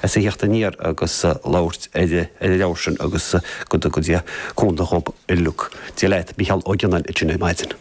a theacht aniar agus labhairt ar an leabhar sin agus go dtuga Dia cúnamh dhób uilig. Dia leat, Mícheál Ó Gionnáin linn ar maidin.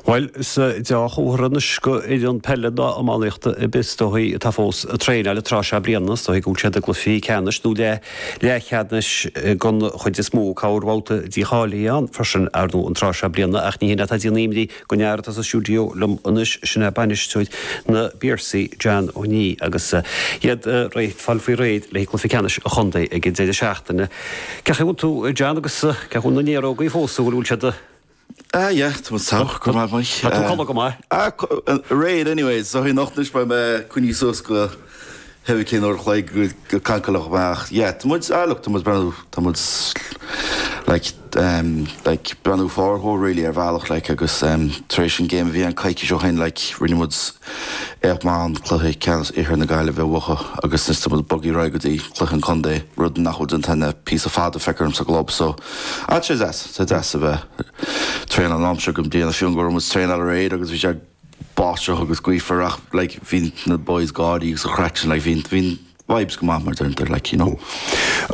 Bhuel, is dea-chomhartha anois go fhoireann peile ná iománaíochta ar bith is dóigh atá fós ag traenáil ag tráth seo bliana. Is dóigh go bhfuil siad i gcluichí ceannais nó leathcheannais den chuid is mó. Cé go bhfuil babhta dícháilithe ann freisin, ar ndóigh, an tráth seo bliana ach ní hin atá de dhíth Go neart atá sa stiúideo liom anois, sin é bainisteoir na bPiarsaí, John Ó Niaidh, agus iad ag fáil faoi réir le haghaidh cluiche ceannais an chontae ag an deireadh seachtaine. Cén chaoi a bhfuil tú, John, agus cén chaoi a bhfuil na néarógaí fós nó bhfuil, bhfuil siad? Ah yeah, tá muid sách go maith, Mike. Tá tú ag codladh go maith. Ah, aréir anyways, so anocht anois beidh mé ag coinní suas go. hurricane uair a chloig go cancelloch mé ach yeah tá muid ah look tá muid ag breathnú tá muid like um like ag breathnú forward really ar bhealach like agus um tar éis an game a bhí ann coicís ó shin like rinne muid éacht maith an cluiche ceannais Iarthar na Gaillimhe a bhuachan agus is tá muid ag bogadh ar aghaidh go dtí cluiche an contae rud nach bhfuil déanta againn le píosa fada feictear dhom sa gclub so ah tá sé deas tá deas a bheith ag traenáil an t-am seo go bhliain fiú an go raibh muid ag traenáil aréir agus bhí sé báisteach agus gaofar ach like bhí na boys ag gáirí agus an chraic sin like bhí bhí an vibes go maith mar deirtear like you know.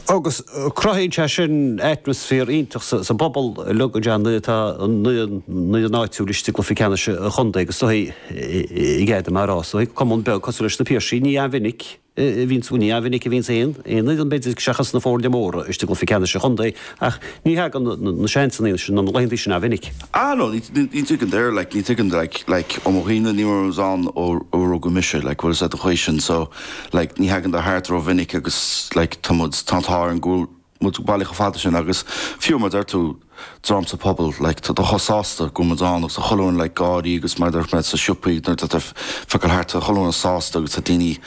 Agus cruthaíonn sé sin atmaisféar iontach sa sa bpobal like go deimhin nuair tá an fhoireann áitiúil istigh i gcluiche ceannais an chontae agus is dóigh i gcéad a mar is dóigh cumann beag cosúil leis na Piarsaigh ní an-mhinic Ní an-mhinic a bhíonns aon fhoireann, b'fhéidir seachas na foirne móra, istigh i gcluichí ceannais an chontae ach ní thagann na seansanna sin, nó na laethanta sin, an-mhinic. Ah no, ní tagann dar, like, ní tagann like, like, ó mo chuimhne ní raibh muide ann ó ó rugadh mise, like, bhfuil fhios a'd an chaoi sin so, like, ní thagann siad thart rómhinic agus, like, tá muid tá tá ar an gcúl, muid bailithe chomh fada sin agus fiú mar deir tú dream sa bpobal like tá siad chomh sásta go bhfuil muid ann agus chuile dhuine like ag gáirí agus mar dúirt mé sa siopaí nuair tá tú ag gabháil thart tá chuile dhuine sásta agus tá daoine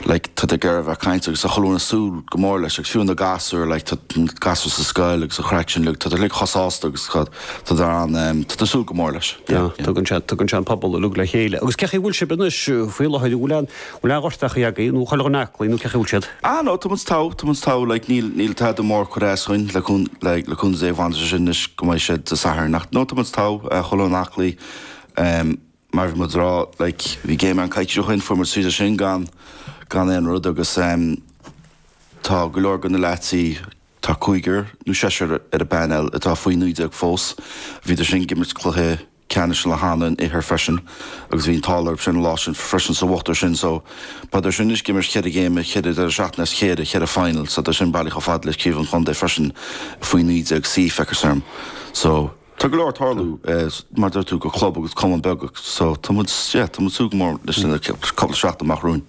like tá siad ag iarraidh a bheith ag caint agus tá chuile dhuine ag súil go mór leis agus fiú na gasúir like tá na gasúir sa scoil agus an chraic sin like tá siad like chomh sásta agus tá tá siad ann ehm tá siad ag súil go mór leis yeah yeah. Tugann sé tugann sé an pobal. uilig le chéile. Agus cén chaoi a bhfuil sibh anois faoi láthair a bhfuil an Mórán gortuithe agaibh nó chuile dhuine aclaí nó cén chaoi a bhfuil siad? Ah no, tá muid togha, tá muid togha, like, níl, níl tada mór ag cur as dhúinn le, like, le cúnamh Dé, fanfaidh sé sin anois go mbeidh sé Dé Sathairn ach no, tá muid togha, chuile dhuine aclaí, ehm, mar bhí muid a rá, like, bhí géim againn coicís ó shin, fuair muid tríd é sin gan, gan aon rud agus ehm, tá go leor go na leaids, tá cúigear nó seisear ar an bpainéal atá faoi naoi déag fós, bhíodar sin ag imirt cluiche. ceannais le hAnnach an Iarthair freisin agus bhí an t-ádh orthu sin an lá sin freisin so bhuadar sin so bhíodar sin anois ag imirt cheithre ghéime cheithre deireadh seachtaine as chéile cheithre final so tá siad sin bailithe chomh fada leis craobh an chontae freisin faoi 19 C feictear dhom so tá go leor ag tarlú mar dúirt tú go chlub agus cumann beag so tá muid yeah tá muid ag súil go mór leis na cúpla seachtain amach romhainn.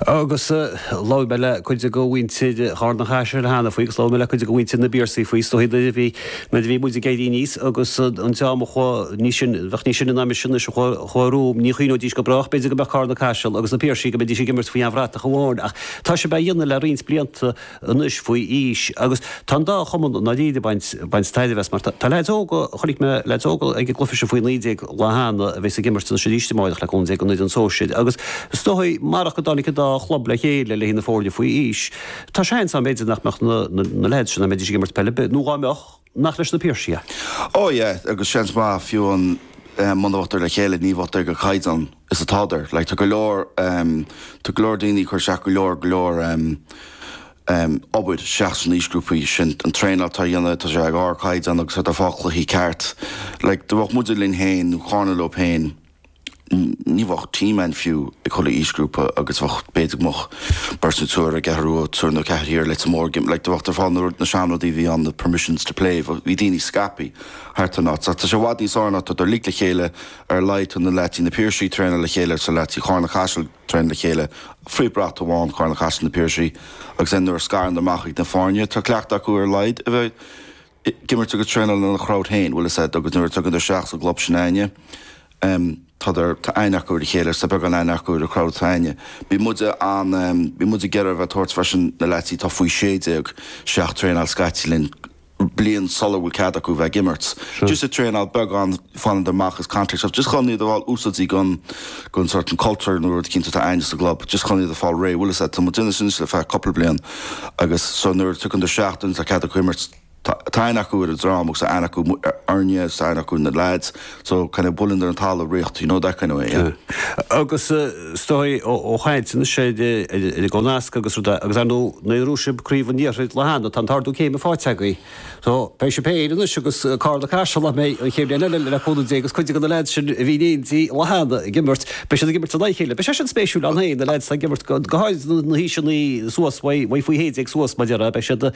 Agus labhair mé le cuid de mhuintir Charna-Caiseal cheana faoi agus labhair mé le cuid de mhuintir na bPiarsaigh faoi. Is dóigh nuair a bhí, nuair a bhí muid ag éirí aníos agus an dream a chuaigh níos sine, bheadh níos sine ná mise anois, a chuaigh, a chuaigh arú, ní chuimhneoidís go brách b'fhéidir go mbeadh Carna-Caiseal agus na Piarsaigh, go mbeidís ag imirt faoi aon bhratach amháin. Ach tá sibh dhá dhéanamh le roinnt blianta, anois faoi aois agus tá an dá chumann i ndáiríre ag baint tairbhe as mar tá leaids óga, chonaic mé leaids óga ag an gcluiche sin faoi naoi déag lá cheana a bheas ag imirt anois arís amáireach leob déanta ag an bhfoireann sóisir agus is dóigh marach go dtáinig an dá chlub le chéile leis na foirne faoi aois tá seans ann b'fhéidir nach mbeadh na leaids sin nach mbeidís ag imirt peil ar bith nó dhá mbeadh nach leis na Piarsaigh a. Ó yeah agus seans maith fiú amháin muna mbeadh dar le chéile ní bheadh dar go caighdeán. is atádar. Like tá go leor, tá go leor daoine ag cur isteach go leor, go leor obair isteach sna haoisghrúpaí sin. An traenáil atá a dhéanamh, tá sé ag ardchaighdeán agus tá dar ag fáil cluichí ceart. Like dá mbeadh muide linn féin nó Carna leo féin, ní bheadh team ann fiú ag chuile aoisghrúpa agus bheadh, b'fhéidir go mbeadh beirt nó triúr ag athrú ó triúr nó ceathrar thiar like tá mór gym, like dá mbeadh dar ag fáil na na seanrudaí a bhí ann na permissions to play, bhí daoine scaipthe thart an áit. Tá sé i bhfad níos fhearr nuair atá dar uilig le chéile, ar laghad tá na leaidí na Piarsaigh ag traenáil le chéile agus tá na leaidí Carna-Caiseal ag traenáil le chéile, faoi brat amháin Carna-Caiseal na Piarsaigh, agus é nuair a scarann dar amach ag na foirne tá cleachtadh acu ar laghad a bheith ag imirt agus traenáil ina na crowd féin, bhuel is ea agus nuair a dtagann dar isteach sa gclub sin aithne tá dar tá aithne acu ar a chéile agus tá beagán aithne acu ar a crowd atá aithne. Bhí muid an bhí muid ag iarraidh a bheith ag tabhairt freisin na leaidí tá faoi sé déag isteach ag traenáil scaití linn, bliain sula bhfuil cead acu bheith ag imirt. Just ag traenáil beagán, fanann dar amach as contact stuff. Just chun iad a fháil úsáidí gon, gon sórt an culture nó rud cinnte atá againn sa gclub. Just chun iad a fháil réidh. Bhfuil fhios a'd, tá muid déanamh sin ar feadh cupla bliain agus so nuair a thagann dar isteach nuair atá cead acu imirt, tá, tá aithne acu ar an dream agus tá aithne acu orainne agus tá aithne acu ar na lads. So kind of buildeáil ón talamh really, you know, that kind of way, yeah. Agus is dóigh ó ag caint ansin ar an nasc agus rudaí agus ar ndóigh ghnóthaigh sibh craobh an iarthair lá cheana tá an t-ardú céime fáighte agaibh. So beidh sibh féin anois agus Carna-Caiseal san aon chéim bhliain eile le cúnamh Dé agus cuid de na leaids sin a bhí in éindí lá cheana ag imirt beidh siad ag imirt in aghaidh a chéile. Beidh sé sin spéisiúil ann féin na leaids atá ag imirt go háirid na haoiseanna suas bhai bhai faoi 11 suas mar a déarfá beidh siad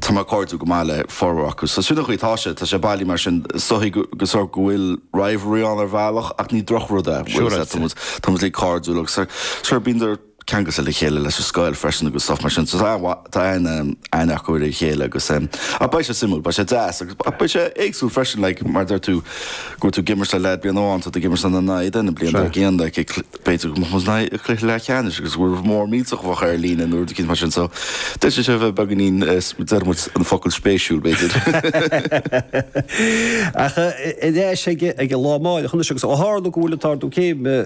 Tá dar cairdiúil go maith le formhór acu so sin an chaoi atá sé. Tá sé bealaí mar sin. Sa gcaoi go sórt go bhfuil rivalry ann ar bhealach ach ní drochrud é. Sure is deas é. Tá muid uilig cairdiúil agus sure bíonn dar ceangailte le chéile leis an scoil freisin agus stuff mar sin so tá tá aithne acu ar a chéile agus em ach beidh sé suimiúil, beidh sé deas agus ach beidh sé éagsúil freisin like mar a dúirt tú go bhfuil tú ag imirt le leaid bliain amháin tá tú ag imirt ina aghaidh i dtosach na bliana dar gcionn like B'fhéidir go mbeadh muid in aghaidh cluiche leathcheannais agus go bhfuil rud mór millteach ar an líne nó rud eicínt mar sin so d'fhéadfadh sé a bheith beagáinín, deir muid an focal spéisiúil b'fhéidir. Ach ag breathnú ar an lá amáireach anois agus ó tharla go bhfuil an t-ardú céime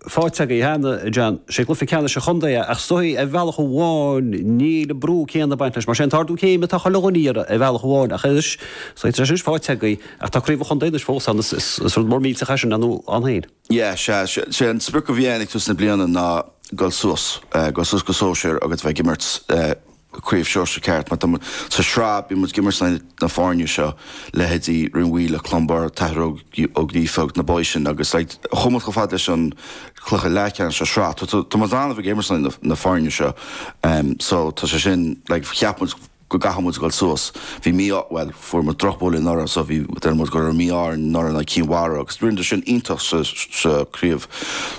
faighte againn cheana, a John, sé cluiche ceannais an chontae é ach is dóigh ar bhealach amháin níl an brú céanna ag baint leis mar sé an t-ardú céime atá chuile dhuine a iarraidh ar bhealach amháin ach anois tá sé sin faighte againn ach tá craobh an chontae anois fós ann is rud mór millteach é sin ann féin. Yeah, sea, sé an sprioc a bhí againn ag tús na bliana ná dul suas, dul suas go sóisear agus bheith ag imirt sa Chraobh Sóisear ceart mar tá muid, sa Sraith, bíonn muid ag imirt le na foirne seo, leithéidí Rinn Mhaoile, Clonbur, An tAthair Ó Gríofa agus na boys sin agus like chuaigh muid chomh fada leis an cluiche leathcheannais sa Sraith, tá muid in ann a bheith ag imirt le na foirne seo so tá sé sin like cheap muid go gcaithfidh muid a dhul suas. Bhí mí-ádh, bhuel, fuair muid drochbhuille anuraidh so bhí, deir muid go raibh mí-ádh orainn anuraidh in aghaidh Cinn Mhara agus rinneadar sin iontach sa, sa Chraobh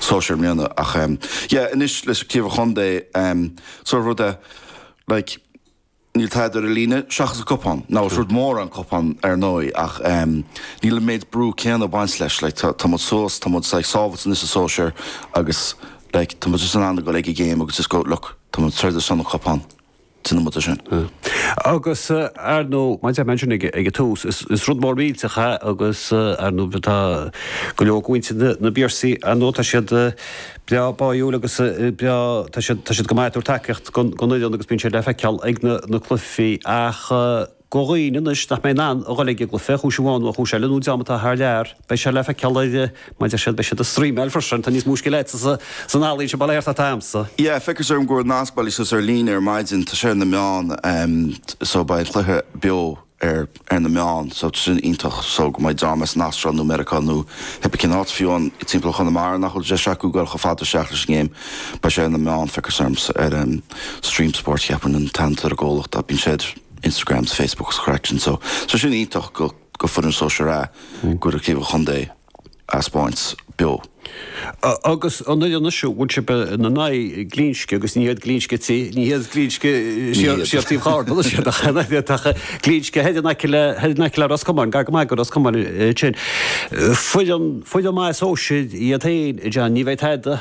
Sóisear i mbliana ach em yeah anois leis an Craobh an Chontae em sort of rud a like níl tada ar an líne seachas an cupán, now is rud mór an cupán ar ndóigh ach em níl an méid brú céanna ag baint leis like tá, tá muid suas, tá muid like sábhailte anois sa Sóisear agus like tá muid just in ann a dhul ag an ngéim agus just go look tá muid ag troid ar son an chupán. Sin an méid sin. Agus, ar ndú, mar a deir mé ansin ag an tús, is rud mór millteach é agus, ar ndú, tá go leor go mhuintir na bPiarsaí, ar ndú, tá siad breá báiúil agus breá, tá siad go maith ag tabhairt tacaíocht don fhoireann agus bíonn siad le feiceáil ag na cluichí ach, Go dhaoine anois nach mbeidh in ann a dhul ag an gcluiche ar chúis amháin nó ar chúis eile nó dream atá thar lear, beidh sé le feiceáil ar, mar deir siad, beidh siad ag streamáil freisin, tá níos mó scil a'dsa san ealaíon sin bail air ná atá agamsa. Yeah, feictear dom go raibh nasc bailithe suas ar líne ar maidin, tá sé ar na meáin so beidh an cluiche beo ar ar na meáin so tá sin iontach so go mbeidh dream as an Astráil nó Meiriceá nó pé cén áit fiú amháin timpeall Chonamara nach bhfuil deis acu dul chomh fada isteach leis an ngéim beidh sé ar na meáin feictear dom ar Stream Sport cheapfainn an t-ainm ar an gcomhlacht ach bíonn sé ar Instagram 's Facebook 's an chraic sin so. So sin iontach go fhoireann Sóisear A go bhfuil Craobh an Chontae a' 'speáint beo. Agus an fhoireann anois a bhfuil sib in a n-aghaidh Glinsce agus ní h-iad Glinsce ti, ní h-iad Glinsce siar taobh Charna iad ach Glinsce thoir in aice le thoir in aice le Ros Comáin gar go maith go Ros Comáin ansin. Foireann foireann mhaith sóisir iad fhéin a John, ní bheidh tada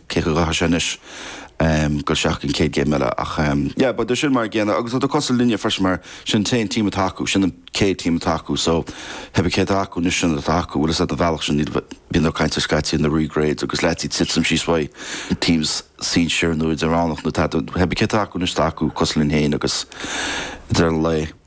éasca go háirithe anois dul isteach ag an chéad gcéim eile ach yeah but sin mar a chéile agus tá siad cosúil linne freisin mar sin an t-aon team atá acu, sin an chéad team atá acu so hé bí céard atá acu anois sin atá acu bhfuil fhios a'd an bhealach sin níl, bíonn tú ag caint scaití ar na re-grades agus leaids ag titim síos uaidh teams sinsir nó idirmheánach nó tá tú, hé bí céard atá acu anois tá acu cosúil linn féin agus ag deireadh an lae.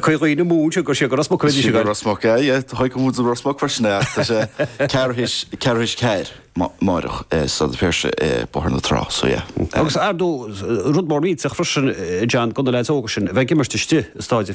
Chuaigh na múinteoirí ag dul siar go Ros Muc a bheidh siad go Ros Muc, aye, yeah, how come to Ros Muc freisin, yeah, ach tá sé Ceathrú tar éis a ceathair amárach, eh, Staid an Phiarsaigh, eh, Bóthar na Trá, so yeah, eh. Agus ar ndóigh rud mór millteach freisin, eh, John, do na leaids óga sin a bheith ag imirt istigh i stáid a.